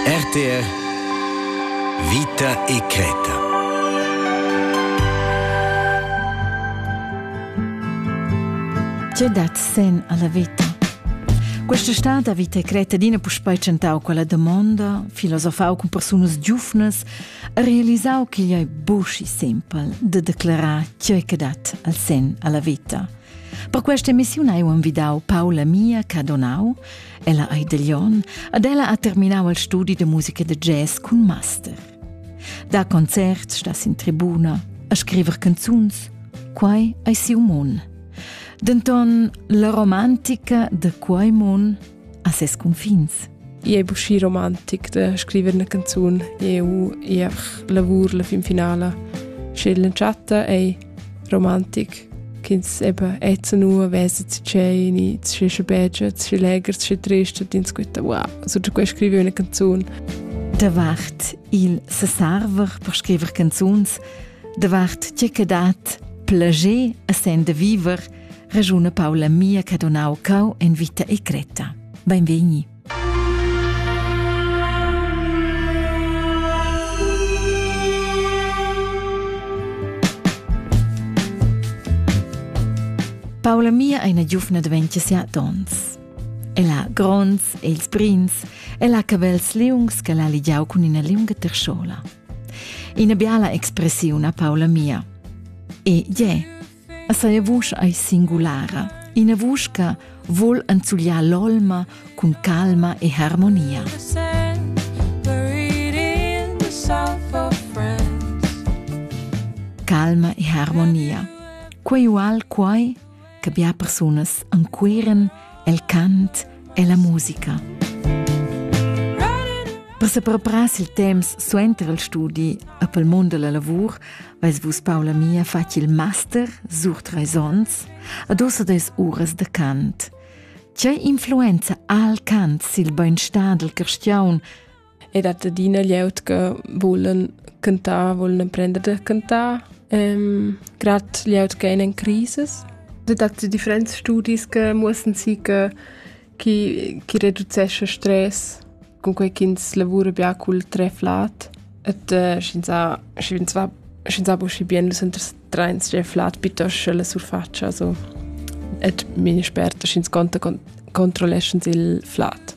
RTR Vita e creta. Tge dat sen alla vita? Questa stad ha vita e creta d'ina puspei tschentau quella domonda, filosofau cun persunas giufnas, ha realisau ch'igl ei buschi simpel de declarar tgei che dat al sen alla vita. Per questa emissiun hai envidau Paula Mia Cadonau, Ella ei da Lyon ad ella ha terminau il studi de musica de jazz cun master. Da concerts stas in tribuna a scriver canzuns, quai ei siu mon. Denton la romantica de quei mon ha ses confins. I è buschi romantic de scrivere una canzone. Eu e lavur la fin finale. Sche la chatta è romantic ch'ins eben jetzt nur weiß zu tscheni, zu schi beige, zu schi leger, zu schi trist, und ins guta, wow, so da quei scrivi una canzone. Davart il sesarver per scriver canzuns, davart tge che dat plager a sen de viver, ragiuna Paula mia che donau cau en vita e creta. Benvegni. Paula mia è una giovane di 27 onns. El ha gronds e ils brins e ha cabels liungs che l'ha ligiau cun ina liunga terschola. Ina biala expressiun a Paula mia. E je, A saja vusch ei singulara, ina vusch che vul enzugliar l'olma cun calma e harmonia. Calma e harmonia. Quei ual quai che bia persunas encueren el cant e la musica. Passa per pras il temps suenter il studi a pel mund della lavur, vais vus Paula mia fatg il master sur treis onns, ad ossa des uras de cant. Che influenza al cant sil beinstar del cristiaun ed hat adina glieud che vulen cantar, volen emprender da cantar, ähm, gerade glieud che in crisis. Dort hat es differente Studien mussten sein, chi, chi reducesce Stress con quei ch'ins lavora bia cul treff lat. Et äh, scienza, scienza, scienza buschi bien dus enters treins treff lat piuttosto la surfaccia, also et mine sperta sch'ins conta controlleschens il flat.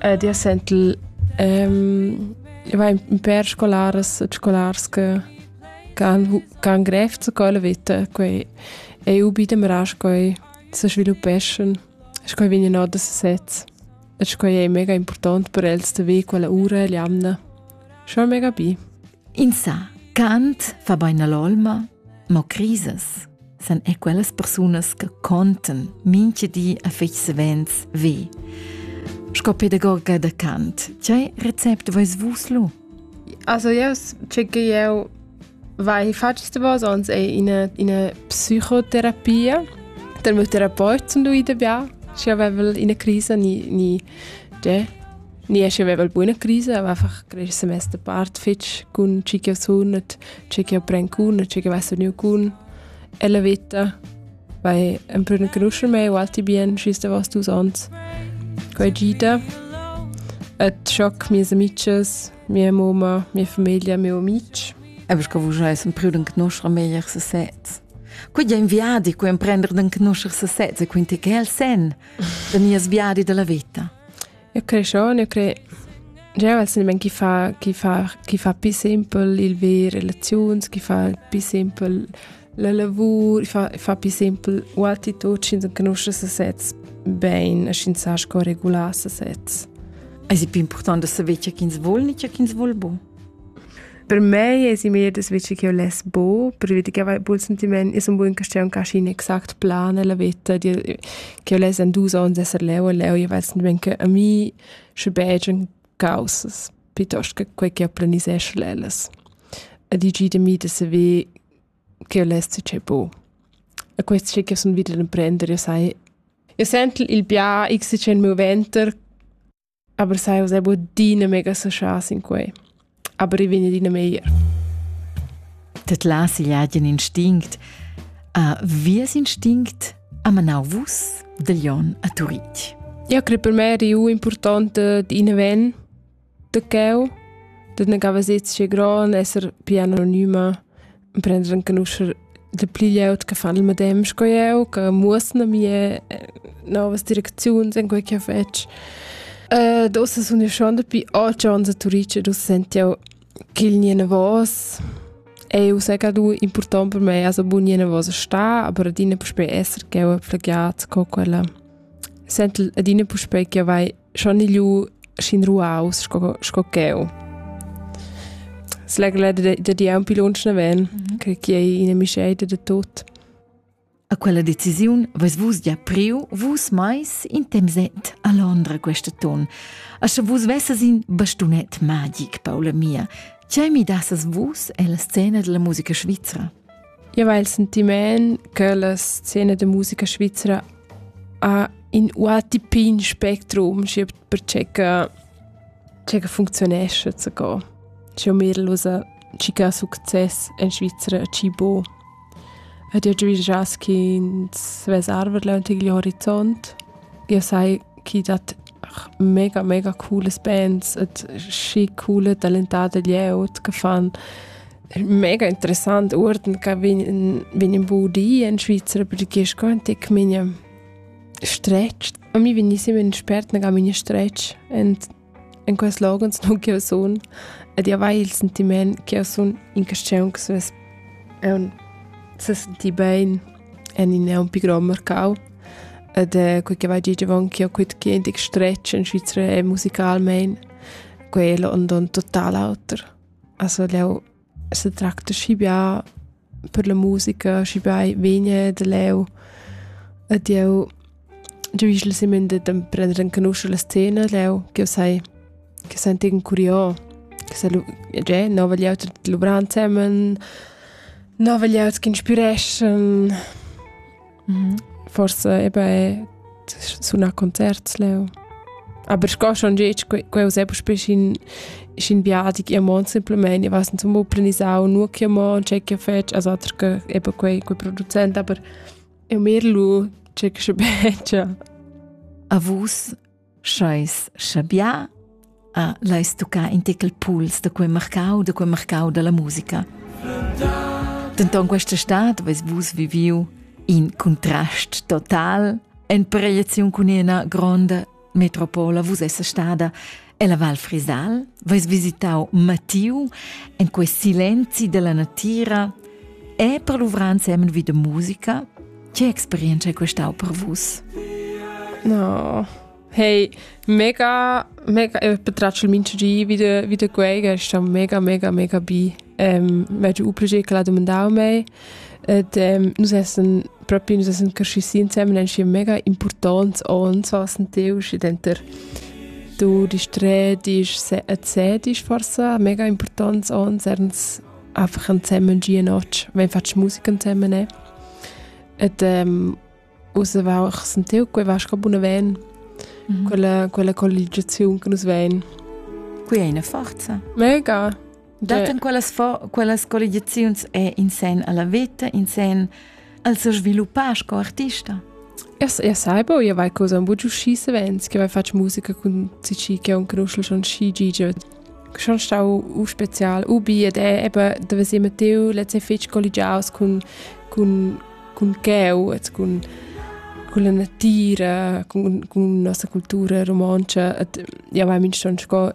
ed ia sent il ehm, va in pêr scolaras e scolars che han grev zu quella vita, quei ei u bi demras quei se sviluppeschan. Sco vegnan or da sesez. E sco ei mega important per els da ve quella ura e l'jamna. Schon mega bi. In sa, Kant fa bain all'olma, mo crisas san è quellas persunas che contan minche di a fich savens ve. Sco pedagoga da Kant, che recept vais vus lu? Also yes, checke eu vai facest vos ons è in in psychotherapia. Der meu Therapeut zum du ida bia, si avevel in crisa ni ni de Ni che aveva buona crisa, aveva far quel semester part fitg cun chi che sunet, chi che pren cun, chi che va veniu cun. E la vita vai empruna conoscer me o alti bien schis da vos dus ons. Quai gita. Et schoc mie amices, mia moma, mia famiglia, mio amici. Ebbers che vus eis empriu den conoscer meglier se sez. Quid è un viadi cui emprender den conoscer se sez e quinti che el sen, de nies viadi della vita. Eu creschon, eu cre Jeu ves silmein chi fa, chi fa, chi fa pi simpel il ver relaziuns, chi fa pi simpel la lavur, fa, fa pi simpel u'attitut, sch'ins enconusce sesez bein, sch'ins sa sco regular sesez. Es è più importante saver ciò ch'ins vuol, ni ciò ch'ins vuol bu. Per mei es i meglier das veci ch'eu less bo, perché che avei bun sentiment, io sun bun ch'stia ün cascin exact plan nella veta, ch'eu less in dus ons esser leu e leu, io vel sentiment che a mi sche begian caussas piuttost che quai ch'eu planisesch l'ellas. E digi da mi da saver ch'eu less tgei bo. E quest sche ch'eu sun vida d'imprender, io sai, io sent il bia xchen moventer Aber sai usai bod adina mega saschas in quei. Aber i vegn adina meglier. Det las igl agen instinct. A vies instinct a manau vus del Jon a Turitg. Ja, credo per me è importante di inven de cheu, de ne gava sezze gran esser più anonima prender enconoscer de pli glieud che fan il medem sco eu, che muossen a mie eh, novas direcziuns in quei che fetg. Uh, dosa sun io schon dapi otg anni a Turice, dus senti io che il niene vos eu sega du important per me also bu niene vos sta, aber adina puspei esser che eu plagiat co quella. Sent adina puspei che vai schon ilu schin ruaus sco sco cheu. Slegla da da di un pilons ne ven, mm -hmm. che chi è ina misceita da tot. A quella decisiun vus vus gia priu vus mais in temset a Londra questa ton. A sche vus vesses in bastunet magic, Paula mia, ce mi dasses vus e la scena della musica svizra? Io hai il sentiment che la scena da musica svizzera ha in UATP in spectrum, perché che, che funzionesce zu go. C'è un Mädel, ci che ha succes in Svizzera, ci bo. Ed io già già che ins svesarver leunt igl horizont. Io sai chi dat mega, mega cooles bands et schi coole talentate glieud che fan mega interessant uorden che vegn vegn in budi in Svizzera perché es quantic migne stretg. A mi vegn sempre in spert che migne stretg und in quels logons non che sun ed io vai il sentiment che sun in questione che es è un se senti bene en in è un pi grond mercau ed è quei che vai gig avonchio quit che indig stretg in Svizra è musicalmein quello und un total auter. Also leu se tracta schi bia per la musica, schi bia vegna da leu ed jeu Giu igl semen da prender enconuscher la scena leu ch'jeu sai che sentin curios, che sa lu tgei nova glieud luvrar ensemen, nova glieud ch'inspireschan. Forsa eba è sunar concerts leu. Aber sco schon gitg, quei uss eba spe sc'in viadi chi amon simpelmain, ich weiß nicht, zum planisau, nur chi amon, che che fetsch, also ater che eba quei quei producent, aber Eu merlu tgei che begia. A vus scheis schabià a l'ais tuccà in tecal puls da quei marcau, da quei marcau dalla musica. Denton questa stad veis vus viviu in contrast total en proieziun cun ina gronda Metropola vus essa stada ella Val Frisal, vais visitau Matiu en quei silenzi della natira e per luvrar insieme vi de musica, che experienza è questau per vus? No. Hey, mega, mega, ich betratsche Menschen ein wieder, wieder gueigen, ist dann mega, mega, mega bei. Ähm, wenn du übrig, ich lade mich auch mehr. Und, ähm, nous essen propi nus essan cresci si instemmen ensi mega importants ons was ein teu schi denter du dis tre dis et se dis forsa mega importants ons erns einfach zusammen die Nacht, wenn fast Musik zusammen ne. Et ähm, rauswachsen teu quei was ka buna ven. Mhm. Quella quella colligiazione che nus ven. Qui è eine Forza. Mega. Dattan quellas, fo- quellas colligiaziuns è in sen alla vita, in sen al se sviluppar sco artista? Io, io saibo, io vai cosa un bugiu sci savens, che vai faccio musica con cici che un conosce schon sci gigio. Schon stau u spezial, u bi, ed è, eben, dove siamo teu, let's say fetch colligiaus con, con, con cheu, con, con la natura, con, con la nostra cultura romancia, ed io vai min schon sco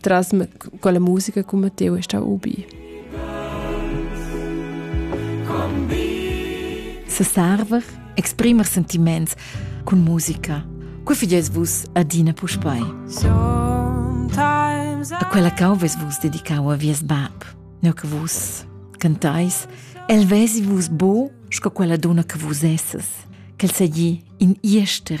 tras quella musica con Matteo è stata ubi. Se server, exprimer sentiments con musica. Cu fides vus adina puspei? A quella cauves vus dedicau a vies bab, ne che vus cantais, el vesi vus bo sco quella donna che vus esses, quel segli in iester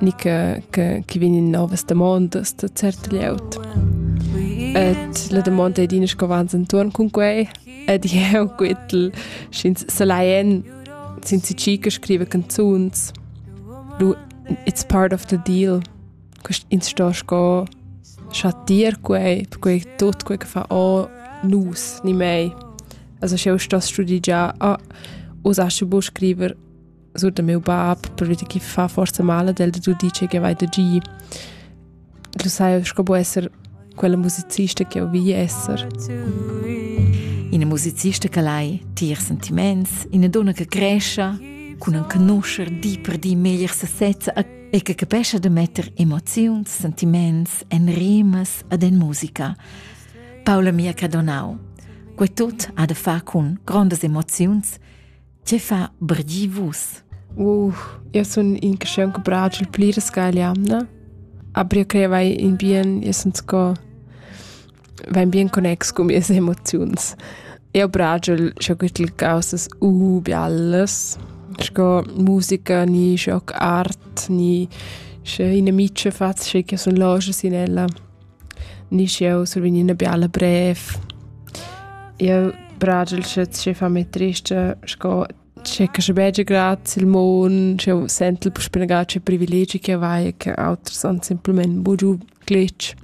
ni che, che, che vegn in novas damondas da cert glieud. Et la domanda è dina sco vans intorn con quei ed jeu quittel sch'ins selaien sin si chica scrive canzuns du it's part of the deal quest ins sto sco schattir quei quei tot quei che fa o nus ni mei also scheu sto studigià a usasche bu scriver suenter meu bab probabilmente che fa forse male del tu dice che vai da gi tu sai sco può essere quella musicista che ho vi essere Ina musicista che lai tier sentiments, ina donna che cresce, con un conoscer di per di meglier sesezza e che capesce de metter emozioni, sentiments en rimas ad en musica. Paola mia che donau. Que tot ha de fa con grandes emozioni Tge fa brgi vus? Uh, eu sun in caschiun che bragia il pli resca egl jamna. Aber eu crei vai in bien, eu sun sco vain bien connex cun mias emoziuns. Eu bragia sco güttel causas uh bellas, sco musica, ni sco art, ni sche ina micia faz, sche che sun loschas in ella. Nisch jeu survegn ina biala brev. Jeu bragel sche tgei fa mei trista, sco tschecca sche begia grazia il mon, sch'jeu sentel spenegà tge privilegi che vai, che auters han semplament bugiu glitch.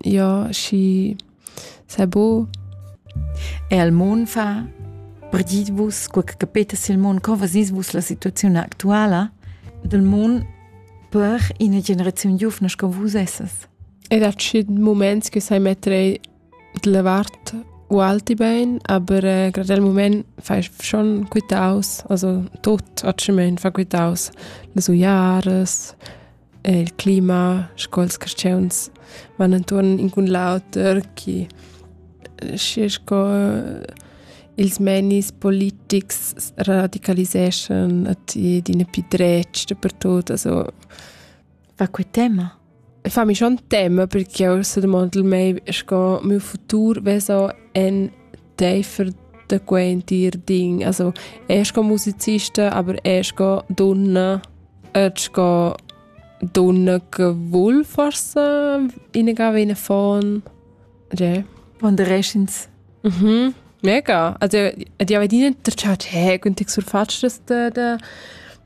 Ja, schi sei bo. E al mon fa perdit vus, quel che capetas il mon, co vasis vus la situaziun actuala del mon per ina generaziun giufna sco vus essas? Ed ha tschient muments che sai metter d'la vart ualti bain, aber grad el mumaint fai schon quitaus, also tut atschamaint fa quitaus, las uiaras, il clima, sco'ls carstgauns van intuorn in cun l'auter, chi schi sco ils meinis politics radicaliseschan ed ina pü dretg dapertut, also... Fa que tema? El fa mi schon tema perché eu sedemondel mei sco miu futur veso en teifer da quei entir ding. Also, er sco musicista, aber er sco donna, er sco donna che vuol forse innegare eine von. Ja. Und der Rest ins. Mhm. Mega. Also, die haben nicht der Charge, hey, und ich surfatsch, dass der, der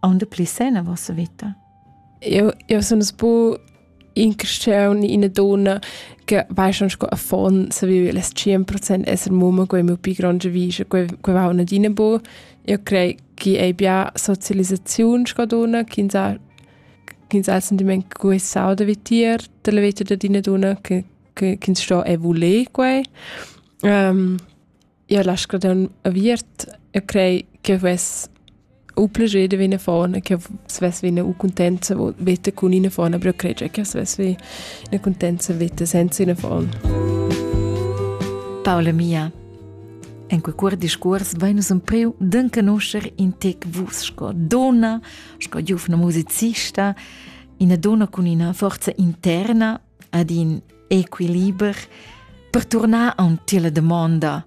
aunde pli sen a vossa vita? Eu, eu sun es bu in cresceun ina donna che vai schon sco affon se vive les 100% esser mumma quei meu pi gronde vise quei quei va una dina bu io crei chi ei bia socializzaziun sco donna chi sa chi sa sentiment cui sau da vitir della vita da dina donna che che ins sto e vole quei um, Io la scadun aviert e crei che vess u plascher da vegnir fona, che svess vegnir u cuntenza veta cun ina fona, però crei che svess vegnir ina cuntenza veta senza ina fona. Paula mia, En quei cuor discuors vein nus empriu d'encanuscher in tec vus sco dona, sco giuvna musicista, ina dona cun ina forza interna, ad in equiliber per turnar aunc tier la damonda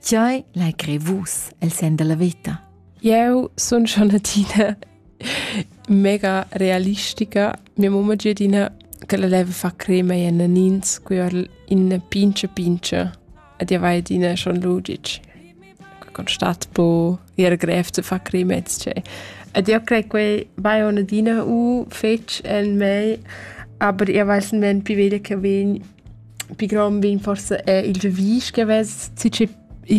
Tgei lai crer vus el sen della veta? Eu sun schon adina mega realistica. Mia mamma è adina che la leva fa crema in ins, qui or in pince pince. Ed io vai adina schon lu ditg constat po ir grev zu far crimets che. Ed io crei quei vai on adina u fetg en mei, aber io weiß men pi veglia che vegn pi grom vegn forse è il gevis che vess ci che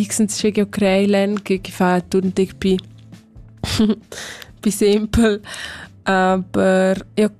x che io crei len che che fa tutteg pi pi simpel aber io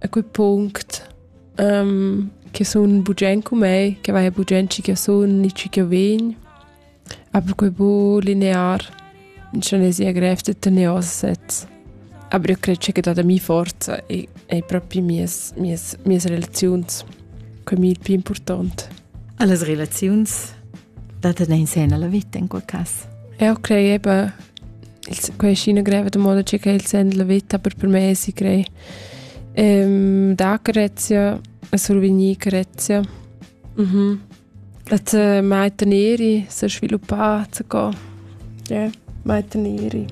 a quei punct um, che sun bugen con me, che vai bugen ci che sun ni ci che vegn. Aber quei bu linear in cinesia grev de tenere ossets. Aber io credo che da mia forza e, e proprio mies, mies, mies relazioni quei mi il più importante. Alle relazioni da tener in sen alla vita in quel cass. Ja, okay, eben. Quei ist eine greve moda che il sen della vita per per me si crei. Ehm da Grezia, survigni Grezia. Mhm. Et mai tenere, se sviluppare, se go. Ie, mai teniri.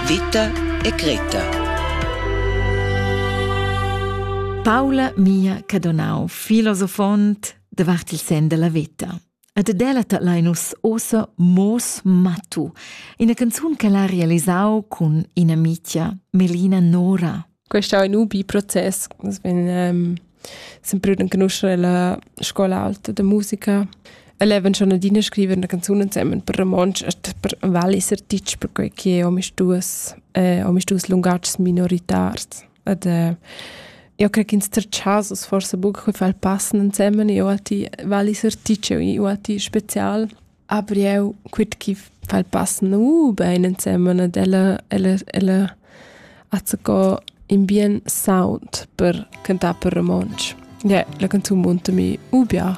Vita e Greta Paula mia cadonau, filosofont davart il sen della vita. Ed delata lein nus ossa Moos Mattu, ina canzun che l'ha realisau cun ina mitia Melina Nora. Questo è un ubi proces, nus vegn um, sempre riconoscere la scuola alta de musica. E leben schon adina scrivere una canzone insieme per romansch e per vallis artists perché che ho mis duas eh, ho mis duas lungatgs minoritars. ed äh, eu crec ins ter chasos forse buca che far passen ensemen io a ti vali esercizio io a ti spezial aber eu quit chi far passen uh bein ensemen ed ella ella ella azzo in bien sound per cantar per romansch yeah, la canzun munta mi ubia